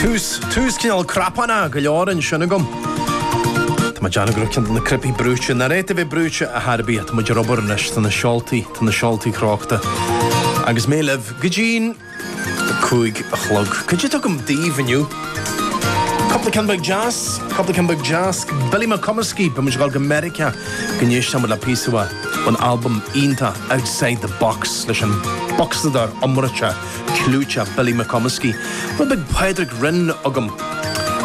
Tús, tús cineál cnapánach go leor ansin agam. Tá mé ag déanamh go raibh ceann de na cnaipí brúite, nár cheart a bheith brúite a thar bith. Tá muid ar obair anois, tá na seoltaí, tá na seoltaí crochta. Agus mé libh go dtí'n cúig a chlog. Cad é atá agam daoibh inniu. Cúpla ceann beag deas, cúpla ceann beag deas. Billy McComiskey, beidh muid ag dul go Meiriceá. go n-éistfidh muid le píosa ón albam iontach Outside the Box leis an bhocsadóir iomráite clúiteach Billy McComiskey, bhuel beidh Pádraig Rynne agam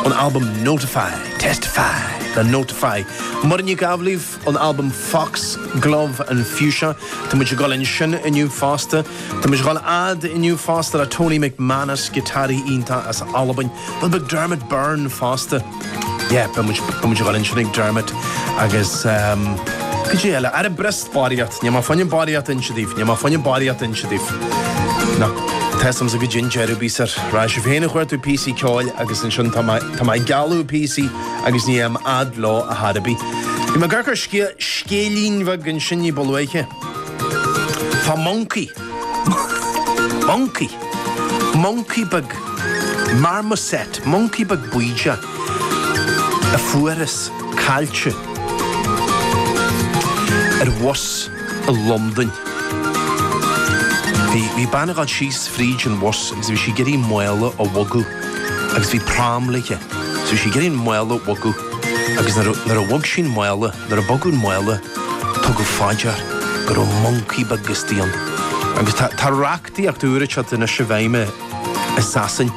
ón albam Notify, Testify le Notify. Muireann Nic Amhlaoibh ón albam Foxglove and Fuchsia, tá muid ag dul ansin inniu fosta. Tá muid ag dul fhad inniu fosta le Tony McManus, giotáraí iontach as Albain, bhuel beidh Dermot Byrne fosta. Yeah, beidh muid, beidh muid a dhul ansin ag Dermot agus ehm, cad é eile. Ara, breis is barraíocht. Níl mé fá choinne barraíocht a inse daoibh, níl mé fá choinne barraíocht a inse daoibh. Nó tá's agamsa go dtí an deireadh bíos ar rá sibh féin ag cuartú píosaí ceoil agus ansin tá mé, tá mé ag gealladh píosaí agus ní fhaighim fhad leo ar chor ar bith. Bhí mé ag amharc ar scé, scéilín bheag ansin ní ba luaithe fá mhoncaí. Moncaí, moncaí beag, marmoset, moncaí beag baoideach a fuarthas caillte ar bhus i Londain. Bhí, bhí bean ag dul síos fríd an bhus agus bhí sí ag iarraidh mála a bhogadh agus bhí pram léithe. So bhí sí ag iarraidh an mála a bhogadh agus nuair a, nuair a bhog sí an mála, nuair a bogadh an mála, Tugadh fá dear go raibh moncaí beag istigh ann agus tá reachtaíocht úr ag teacht anois i bhfeidhm i Sasain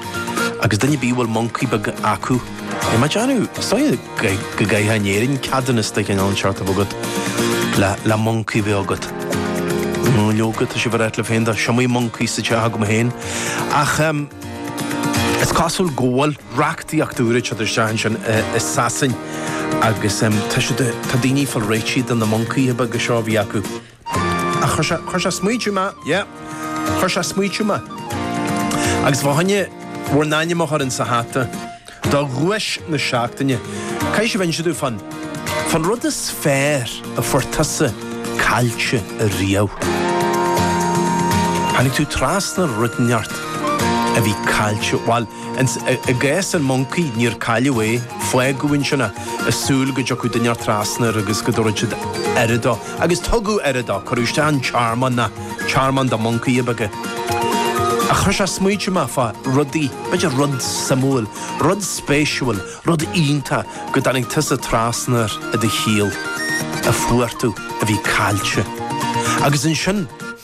agus duine ar bith a bhfuil moncaí beag acu, tá mé ag déanamh, so, go gcaithfeá in Éirinn ceadúnas de chineál inteacht a bheith agat le moncaí a bheith agat. Nó leoga, tá sibh ar ait le féin, tá, is iomaí moncaí sa teach agam féin. Ach is cosúil go bhfuil. reachtaíocht úr ag teacht isteach ansin i Sasain agus tá siad, tá daoine ag fáil réitithe de na moncaithe beaga seo a bhí acu. Ach chuir sé, chuir sé ag smaoitiú mé, yeah, chuir sé ag smaoitiú mé. Agus fá choinne bhur n-ainm a chur insa hata, do dhuais na seachtaine, caithfidh sibh inse domh fan, fan rud is fearr a fuair tusa caillte ariamh. Tháinig tú trasna ar rud inteacht a bhí caillte, bhail, I gcás an mhoncaí, níor cailleadh é, fágadh ansin é ag súil go dtiocfadh duine inteacht trasna air agus go dtabharfadh siad aire dó. Agus tugadh aire dó, cuireadh isteach i dtearmann, na, tearmann do mhoncaithe beaga é. Ach chuir sé ag smaoitiú mé fá rudaí, b'fhéidir rud suimiúil, rud spéisiúil, rud iontach go dtáinig tusa trasna air i do shaol, a fuair tú, a bhí caillte. Agus ansin,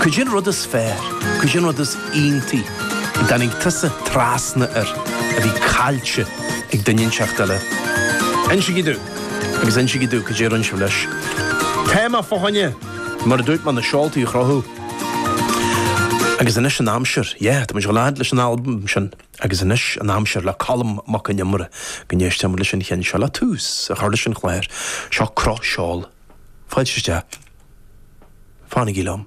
Cad é an rud is fearr, cad é an rud is iontaí a dtáinig tusa trasna air a bhí caillte ag duine inteacht eile. Insigí domh, agus insigí domh cad é a rinne sibh leis. Téama fá choinne, mar a dúirt mé, na seoltaí a chrochadh. Agus anois an aimsir, yeah, tá muid ag gabháil a fhad leis an albam sin, agus anois an aimsir le Colm Mac Con Iomaire go n-éistfidh muid leis an cheann seo le tús a chur leis an chlár. Seo Croch Seol. Fáilte isteach. Fanaigí liom.